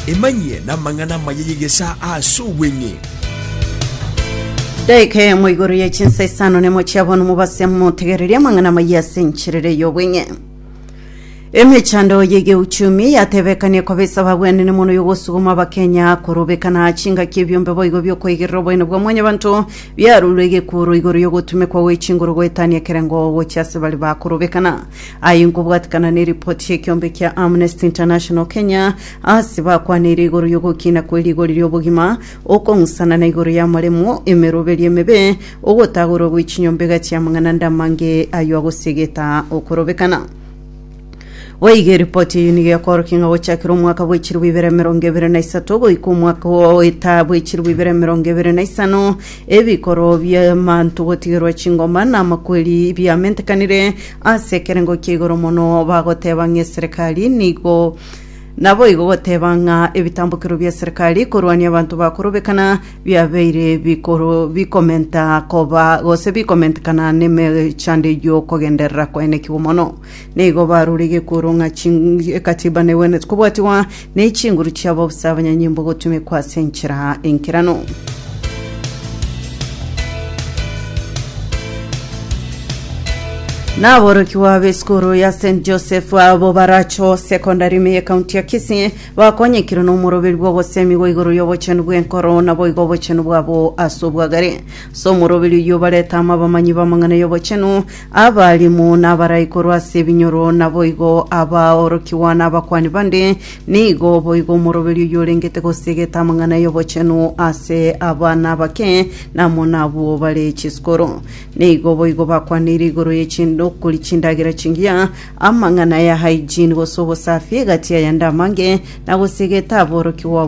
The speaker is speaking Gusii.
Emanyie namang'ana amaya y'egesaa ase obweng'e. Daika eyemo igoro ye chinsa isano nemo chiabona omobasi amotegererie amang'ana amaya ase enchirere y'obweng'e emechando yegeuchumi yatebekanie koba esaba bwenene mono yogosuguma abakenya korobekana chingaki ebiombe boigo biokoigerera oboene bwa mwanyabanto biarurwe egekuoro igoro yogotumekwa gwe chinguru goetania ekerengo gochia ase bari bakorobekana Aye nkobwatekana neripoti y'ekiombe kia Amnesty International Kenya ase bakwaneire igoro y'ogokina kwe rigori ri'obogima, okong'usana na igoro y'amaremo, emeroberio emebe, ogotagorwa gwe chinyomba iga chi'amang'ana ande amange ayio agosiegeta okorobekana. Boigo eripoti eyio nigo ekworokia ng'a gochakera omwaka bwa echirobo ibere emerongo ebere na isato goika omwaka oeta bwa echirobo ibere emerongo ebere na isano, Ebikoro bi'amanto gotigerwa chingoma na amakweri biamentekanire ase ekerengo kia igoro mono, bagoteba ng'eserekari nigo naboigo goteba ng'a ebitambokero bia serekari korwania abanto bakorobekana biabeire bikoro bikomenta koba gose bikomentekana nemechando y'okogenderera kwaenekigwa mono. Nigo barorige kworo ng'a Ekatiba negwenerete kobwatigwa, na echinguru chiabo gose abanyanyimbo gotumekwa ase enchera enkerano. Na aborokigwa b'esukuru ya St Joseph abo Baracho Secondary me y'ekaunti ya Kisii bakonyekirwe n'omoroberi bw'ogosemigwa igoro y'obochenu bw'enkoro na boigo obochenu bwabo ase obwagare. Ase omoroberi oyio bareta amo abamanyi b'amang'ana y'obochenu Abaalimu nabarai korwa ase ebinyoro, naboigo abaorokigwa nabakuani bande, nigo boigo omoroberi oyorengete gosegeta amang'ana y'obochenu ase abana abake namo nabwo bare chisukuru. Nigo boigo bakwaneire igoro ye chindokori chindagera chingiya, amang'ana ya hygiene gose obosafi egati aya nde amange, na gosegeta aborokigwa